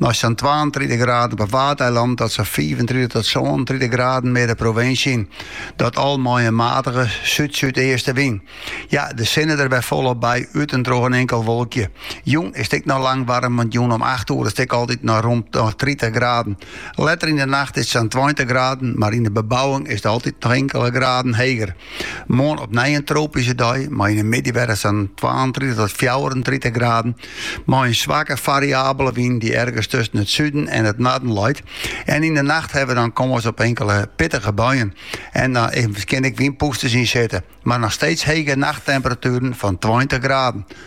Nei sa'n twaentritich graden op 'e Waadeilannen tot sa'n fiifentritich tot sânentritich graden mear de provinsje yn. Dat al mei in matige súd-súdeastewyn. Ja, de sinne der wer folop by, út en troch in inkeld wolkje. Jûn is it ek noch lang waarm, want jûn om acht oere is it ek altyd noch rûn tritich graden. Letter yn de nacht is it sa'n tweintich graden, mar yn de bebouwing is it altyd noch inkele graden heger. Moarn opnij in tropyske dei mei yn de middei wer sa'n twaentritich tot fjouwerentritich graden, mei in swakke fariabele wyn dy't ergens tusken it suden en it noarden leit. En yn de nacht hawwe we dan kâns op inkele pittige buien en dan kinne ek wynpûsters yn sitte, mar noch steeds hege nachttemperatueren fan tweintich graden.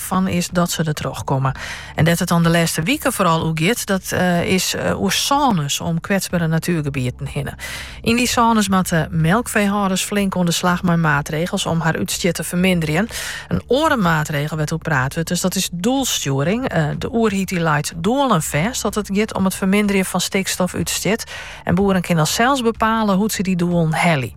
fan is dat se der troch komme. En dêr't it dan de lêste wike foaral oer giet, dat eh, is eh, oer sônes om kwetsbere natuergebieten hinne. Yn dy sônes moatte melkfeehâlders flink oan de slag mei maatregels om har útstjit te ferminderjen. In oare maatregel wêr't oer praat wurdt, dus dat is doelstjoering. Eh, de oerheid dy leit doelen fêst at it giet om it ferminderjen fan stikstofútstjit. En boeren kinne sels bepale hoe't se dy doelen helje.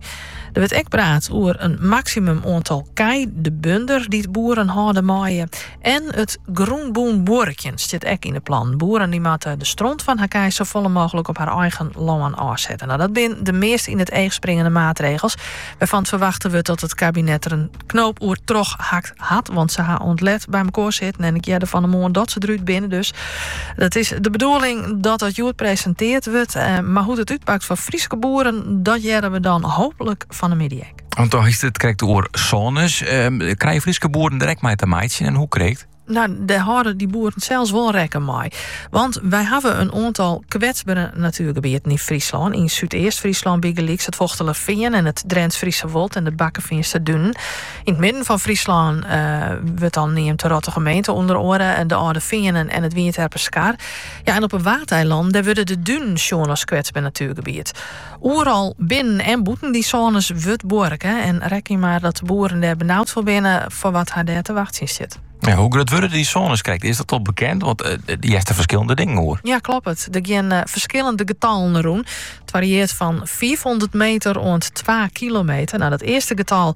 Der wurdt ek praat oer in maksimum oantal kij de bunder dy't boeren hâlde meie. En it grûnbûn buorkjen stiet ek yn de plannen. Boeren dy moatte de stront fan har kij safolle mooglik op har eigen lân ôfsette. No, dat binne de meast yn it each springende maatregels wêrfan't ferwachte wurdt dat it kabinet der in Knoop oer trochhakt hat, want se ha oant let by mekoar sitten en ik hearde fan 'e moarn dat se derút binne. Dus dat is de bedoeling dat dat hjoed presenteerd wurdt. Eh, mar hoe't it útpakt foar Fryske boeren, dat hearre we dan hooplik fan 'e middei. Want do hiest it krekt oer sônes. Ehm, krije Fryske boeren dêr ek mei te meitsjen en hoe krekt? No, dêr hâlde dy boeren sels wol rekken mei. Want wy hawwe in oantal kwetsbere natuergebieten yn Fryslân. Yn Súdeast-Fryslân bygelyks it Fochtelerfean en it Drents-Friese Wold en de Bakkefeanster Dunen. Yn it midden fan Fryslân eh, wurdt dan neamd de Rottige Meente ûnder oare de Alde Feanen en it Wynjeterper Skar. Ja, en op 'e Waadeilannen, dêr wurde de dunen sjoen as kwetsber natuergebiet. Oeral binnen en bûten dy sônes wurdt buorke en rekkenje mar dat de boeren dêr benaud foar binne foar wat har dêr te wachtsjen stiet. Ja, hoe grut wurde dy sônes krekt? Is dat al bekend? Want eh, eh, hearst der ferskillende dingen oer. Ja, kloppet. Der gean eh, ferskillende getallen rûn. It fariearret fan 500 meter oant 2 kilometer. No, dat earste getal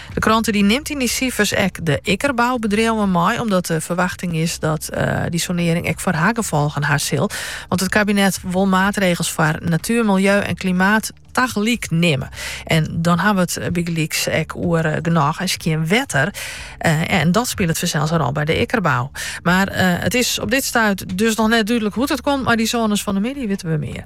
De krante dy nimt yn dy sifers ek de ikkerboubedriuwen mei, omdat de ferwachting is dat dy sonearring ek foar har gefolgen ha sil. Want it kabinet wol maatregels foar natuer, miljeu en klimaat tagelyk nimme. En dan hawwe we it bygelyks ek oer genôch en skjin wetter. En dat spilet fansels in rol by de ikkerbou. Mar it is op dit stuit dus noch net dúdlik hoe't it komt mei dy sônes. Fan 'e middei witte we mear.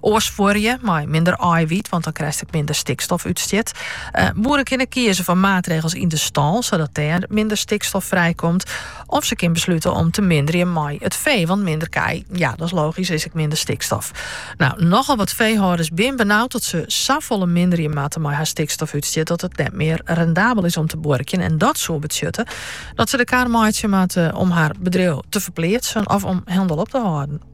Oars fuorje mei minder eiwiet, want dan krijst minder stikstof útstjit. Eh, boeren kinne kieze foar maatregels yn de stâl, sadat dêr minder stikstof frijkomt. Of se kin besluten om te minderjen mei it fee, want minder kij, ja, dat is logisch, is ek minder stikstof. Nou, nochal wat feehâlders bin benaud dat se safolle minderje moatte mei har stikstofútstjit dat it net mear rendabel is om te buorkjen. En dat soe betsjutte dat se de kar meitsje moatte om har bedriuw te ferpleatsen of om hielendal op te hâlden.